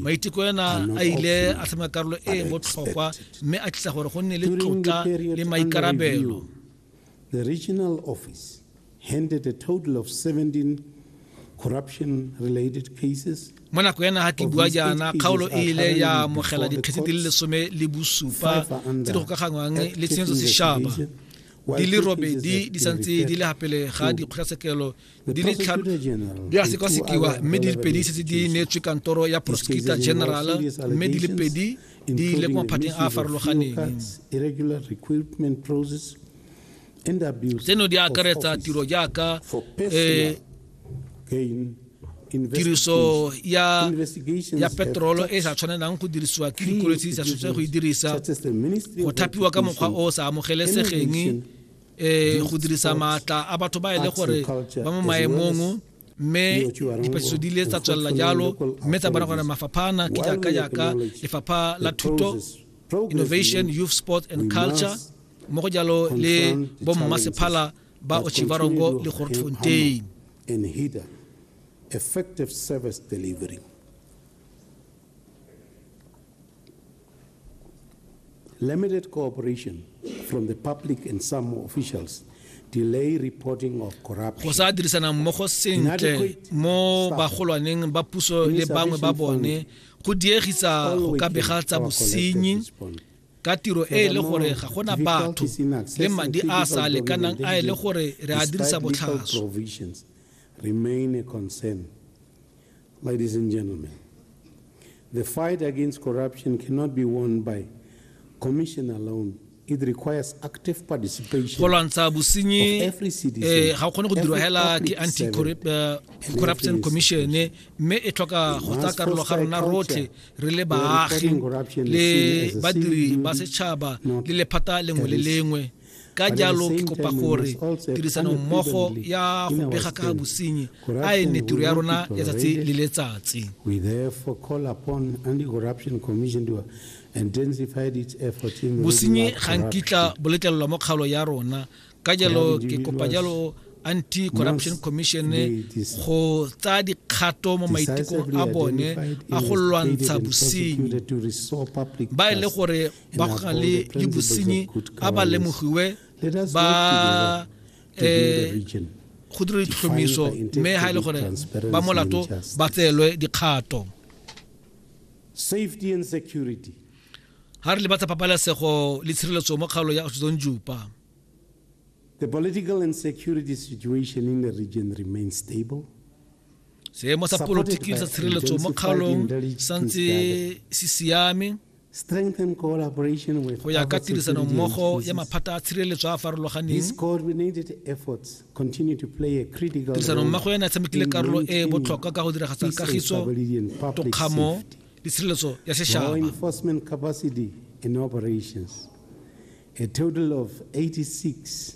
maiteko ena a ile a tlhoma karolo e e botlhokwa mme a tlisa gore go nne le tlotla le maikarabelo The regional office handed a total of 17 corruption-related cases mo nako ya naga ke bua jaana kgaolo e ile ya amogela dikgetse di le lesome le bosupa tse di gokaganywang le tshenyetso sešaba di le robedi di santse di le gapele ga dikgotlatshekelo di le tlhano di a sekasekiwa mme di le pedi setse di neetswe kantoro ya prosecutor general mme di le pedi di ile ko maphateng a a farologaneng tseno di akaretsa tiro jaaka um tiriso ya ya petrolo e sa tshwanelang go dirisiwa ke dikoloi tse di sa tshwanetseng go e dirisa go thapiwa ka mokgwa o o sa amogelesegeng e go dirisa maatla a batho ba e le gore ba mo maemong mme dipatlisiso di ile tsa tswelela jalo mme tsa bona gore mafapha ana ke jaaka jaaka lefapha la thuto innovation youth sport and culture mo go jalo le bommasephala ba ochivarongo le gortfontein effective service delivery Limited cooperation from the public and some officials delay reporting of corruption. Go sa dirisana mmogo sentle mo bagolwaneng ba puso le bangwe ba bone go diegisa go ka bega tsa bosenyi ka tiro e e le gore ga gona batho le madi a sa lekanang a e le gore re a dirisa botlhaswa Ladies and gentlemen, the fight against corruption cannot be won by commission alone. It requires active participation go lwantsha bosenyi eh, ga o kgone go dirwa hela ke anti-corruption eh, commission eh, mme e tlhoka go tsaya karolo ga rona rotlhe re le baagi le badiri ba setšhaba le lephata lengwe le lengwe ka jalo ke kopa gore tirisano mmogo ya go bega ka bosenyi a e ne tiro ya rona ya tsatsi le letsatsi bosenyi ga nkitla boletlelelwa mo kgaolo ya rona ka jalo ke kopa jalo anti-corruption commission go tsaya dikgato mo maitekong a bone a go lwantsha bosenyi ba e le gore ba go na le le bosenyi a ba lemogiwe ba um go dira ditlhomiso mme ga e le gore ba molato ba tseelwe dikgato safety and security ha re le batsa pabalesego le tshireletso mo kgaolo ya Oshizon Jupa The political and security situation in the region remains stable. seemo sa polotiki sa tshireletso mo kgaolong santse se siame go ya ka tirisano mmogo ya maphata a tshireletso a a farologaneng tirisano mmogo yana e tshamekile karolo e e botlhokwa ka go diragatsa kagiso tokgamo le tshireletso ya setšhaba A total of 86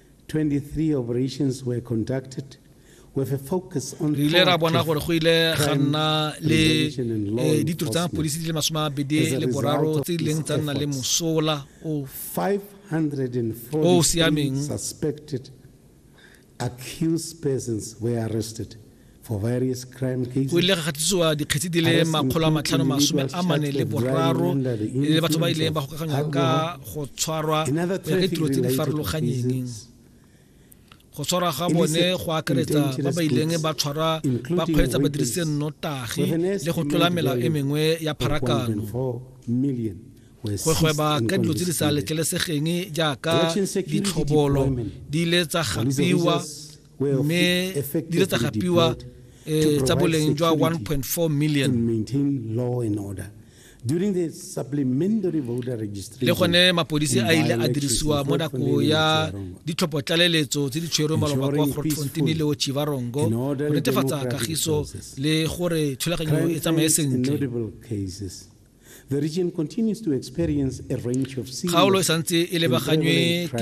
23 operations were conducted re ile ra bona gore go ile ga nna le eh, ditiro tsa mapodisi di le masome a mabedi le boraro tse di leng tsa nna le mosola o o siameng accused persons were arrested o ile ga gatitsiwa dikgetsi di le makgolo a matlhano masome a mane le boraro le batho ba ileng ba gokaganywa ka go tshwarwa go ya ka ditiro tse di farologanyeng go tshwarwa ga bone go akaretsa ba ba ileng ba tshwarwa ba kgweetsa ba dirise nnotagi le go tlola melao e mengwe ya pharakano go gweba ka dilo tse di sa letlelesegeng jaaka ditlhobolo di ile tsa gapiwa mme di le tsa gapiwa um tsa boleng jwa 1.4 million le gone mapodisi a ile a dirisiwa mo nako ya ditlhopho tlaleletso tse di tshwerwe maloba kwa grootfonteine le ochivarongo go netefatsa kagiso le gore thulaganyo e tsamaye sentle kgaolo e santse e lebaganywe ke